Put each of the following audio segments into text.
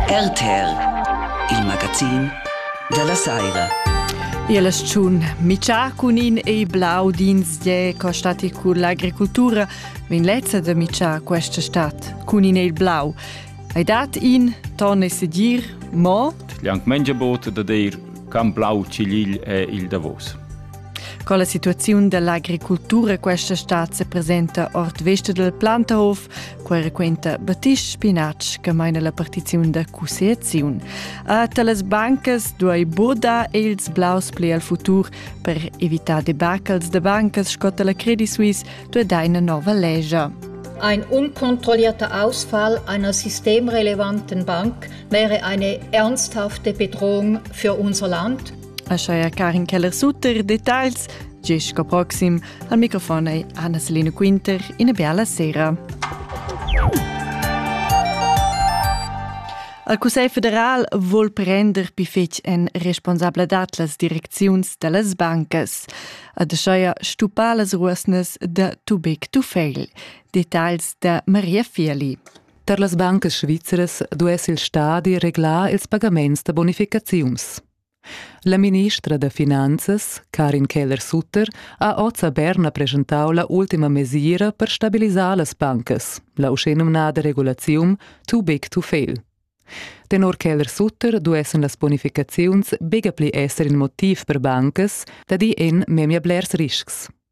RTL, il magazin dalla saira. E la stagiun mitschà cun in e blau d'ins è constati cun l'agricultura vegn lezza da mitschà questa stat cun in e blau. Hai dat in ton e sedir, mo? Glianc mengia bot da dir can blau cigl è il davos. Con la situaziun dell'agricultura questa stad se presenta ord vesta del Plantahof, quei raquenta Batisch Spinatsch, che meina la partiziun da cuseziun. A talas bancas duei boda e ils blaus play al futur per evitar debacals de bancas scotta la Credit Suisse duei eine nova legia. Ein unkontrollierter Ausfall einer systemrelevanten Bank wäre eine ernsthafte Bedrohung für unser Land Aschia Karin Keller-Sutter details. Jessica Proxim al microfon ei Anna-Selina Quinter ina biala sera. Al Cussegl federal vuol prender pi fetg en responsabla dat las direcziuns da las bancas. Ad ascheia stupà las ruosnas da Too Big to Fail. Details da Maria Fieli. Per las bancas svizzeras duess il stadi reglar ils pagaments da bonificaziuns. La ministra da finanzas, Karin Keller-Sutter, ha oz a Berna presentau la ultima mesira per stabilisar las bancas, la uschenumnada regulaziun too big to fail. Tenor Keller-Sutter duessen las bonificaziuns buca pli esser in motiv per bancas da dir en memia blers riscs.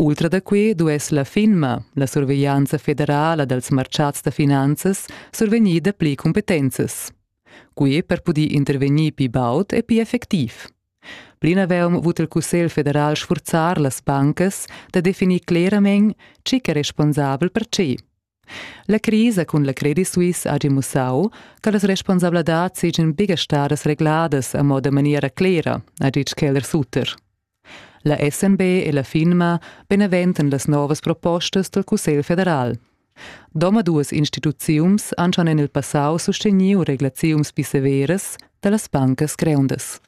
Ultra da quei duess la FINMA, la surveglianza federala dals martgads da finanzas, survegnir dapli cumpetenzas. Quei per pudir intervegnir pli baud e pli effectiv. Plinavem vut il Cussegl federal sfurzar las bancas da definir cleramain tgi ch'è responsabel per tgi. La crisa cun la Credit Suisse hagi mussau che las responsabladads seigien bia stadas regladas a moda maniera clera, ha ditg Keller Sutter. La SNB e la FINMA beneventan las novas propostas dal Cussegl federal. Domaduas instituziuns han schon en il passau susteniu reglaziuns più severas dallas bancas grandas.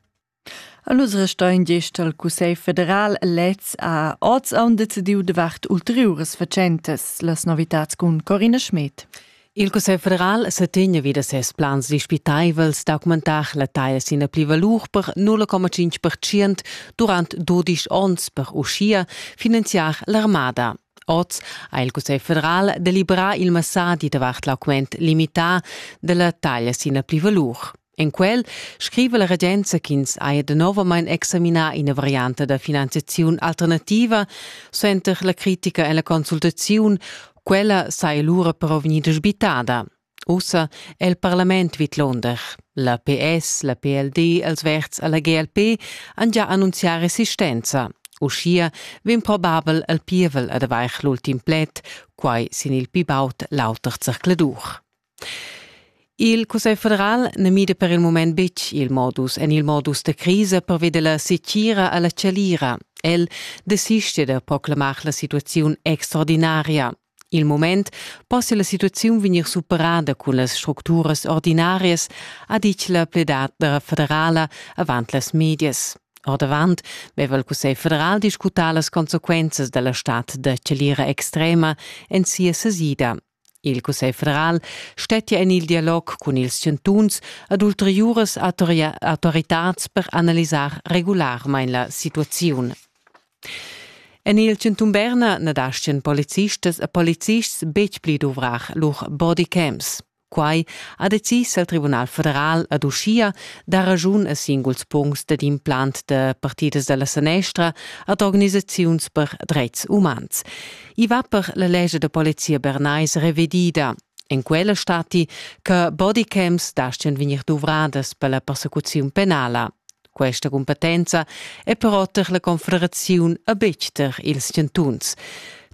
A nus resta in gest al Cussegl federal lez a oz aun decidiu davart ulteriuras fatschentas las novitats cun Corina Schmidt. Il Cussegl federal setegna vi da ses plans dispitaivels d'augmentar la taia sin plivalur per 0,5% durant 12 onns per uschia finanziar l'armada. Oz ha il Cussegl federal deliberà il messadi davart l'augment limità della taglia sin plivalur. En quel scriva la regenza ch'ins haja danovamein examinà ina varianta da finanziaziun alternativa suenter la critica e la consultaziun. Quella saja lura però vegnida sbittada. Ussa è il parlament vidlonder. La PS, la PLD, els verds alla GLP han già annunzià resistenza. Uschia vegn probabel el pievel ad avair l'ultim pled, quai sin il pi baud l'auter zercladur. Il Cussegl federal na mida per il mument betg il modus en il modus da crisa pervida la setgira a la chalira. El desistia da proclamar la situaziun extraordinaria. Il mument possia la situaziun vegnir superada cun las structuras ordinarias, ha ditg la pledadra federala avant las medias. Ordavant veva il Cussegl federal discutà las consequenzas dalla stad da chalira extrema en sia sesida. Il Cussegl federal stettia en il dialog cun ils chantuns ad ulteriuras autoritads per analisar regularmain la situaziun. En il chantun Berna na dastgan policistas e polizists betg pli duvrar lur bodycams. Quai ha decis il Tribunal federal ad uschia da raschun a singuls puncts dad implant da partidas da la sanestra ad organisaziuns per dretgs umans. I va per la legia da polizia bernais revedida. En quella stati che bodycams dastian vegnir duvradas per la persecuziun penala. Questa competenza è però ter la Confederaziun e betg ter ils chantuns.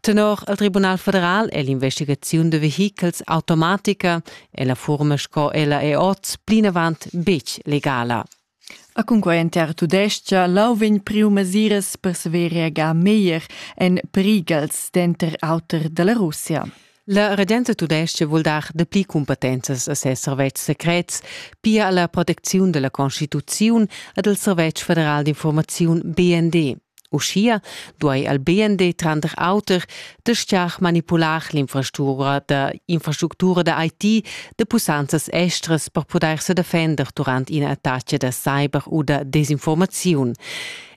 Tenor il Tribunal federal è l'investigaziun da vehichels automatica e la forma sco ella è oz plinavant betg legala. E cunquei entir tudestg leu vegn priu mesiras per saver reagar meglier en prighels denter auter dalla Russia. La regenza tudestga vul dar dapli cumpetenzas a ses servetschs secrets, pia alla protecziun dalla constituziun ed al servetsch federal d'informaziun BND. Uschia duai il BND tranter auter destiar manipular l'infrastructura da, infrastructura da IT de pussanzas estras per pudair se defender durant ina attacca da cyber u da desinformaziun.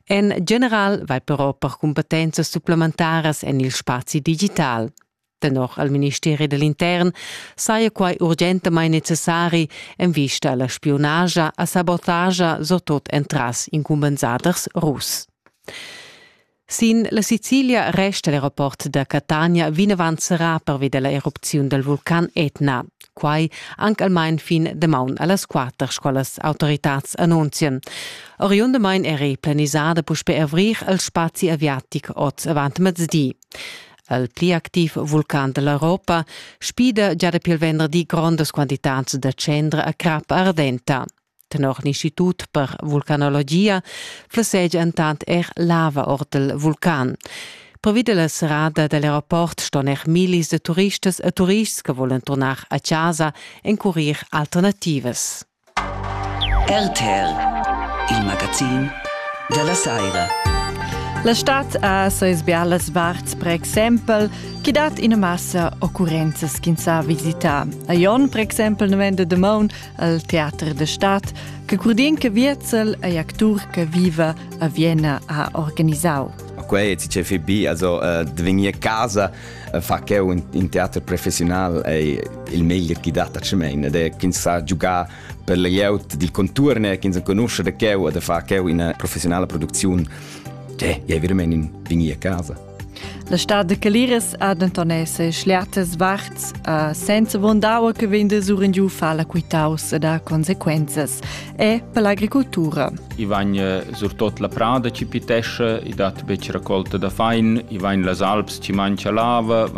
En general vai però per cumpetenzas supplementaras en il spazi digital. Tenor al ministeri da l'intern saja quai urgentamain necessari en vista a la spiunagia, a sabotagia, surtut entras incumbensaders russ. Sin la Sicilia resta l'aeroport da Catania vinavant serrà pervi da l'erupziun dal vulcan Etna. Quai anc almain fin damaun a las quatter scolas autoritads annunzian. Oriundamain eri planisada puspè avrir il spazi aviatic oz avant mezdi. El pli activ vulcan dell'Europa spida gia dapi il venderdi grondas quantitads da tschendra a crap ardenta. Tenor l'Institut per vulcanologia flessegia entant er lava ord il vulcan. Previda la serrada dell'aeroport ston er milis de turistas e turists che volen turnar a casa encurir alternativas. RTL, il magazin della saira. La stad ha seis bialas varts per exempel chi dat ina massa occurrenzas ch'ins sa visitar. A Jon, per exempel, non vende de Maun al Teater de Stadt, che Curdin che Vierzel, ei actur che viva a Vienna, ha organisau. Quei ti CFB, also uh, de vegnir a casa fa che un in teater professional è il meglio che data ci meine de ch'ins sa giugar per layout dil conturne ch'ins conosce de cheu e de fa cheu ina professionale produzione Tè, je vermen in vingi a casa. La stad de Caliris ha denton esse schliatas varts uh, senza vondaua che vende sur in giu fa la quitaus ed ha consequenzas. è per l'agricoltura. I vegn surtot la prada ci pitesce, i dat bec raccolta da fain, i vegn las alps ci mangia lava, vegn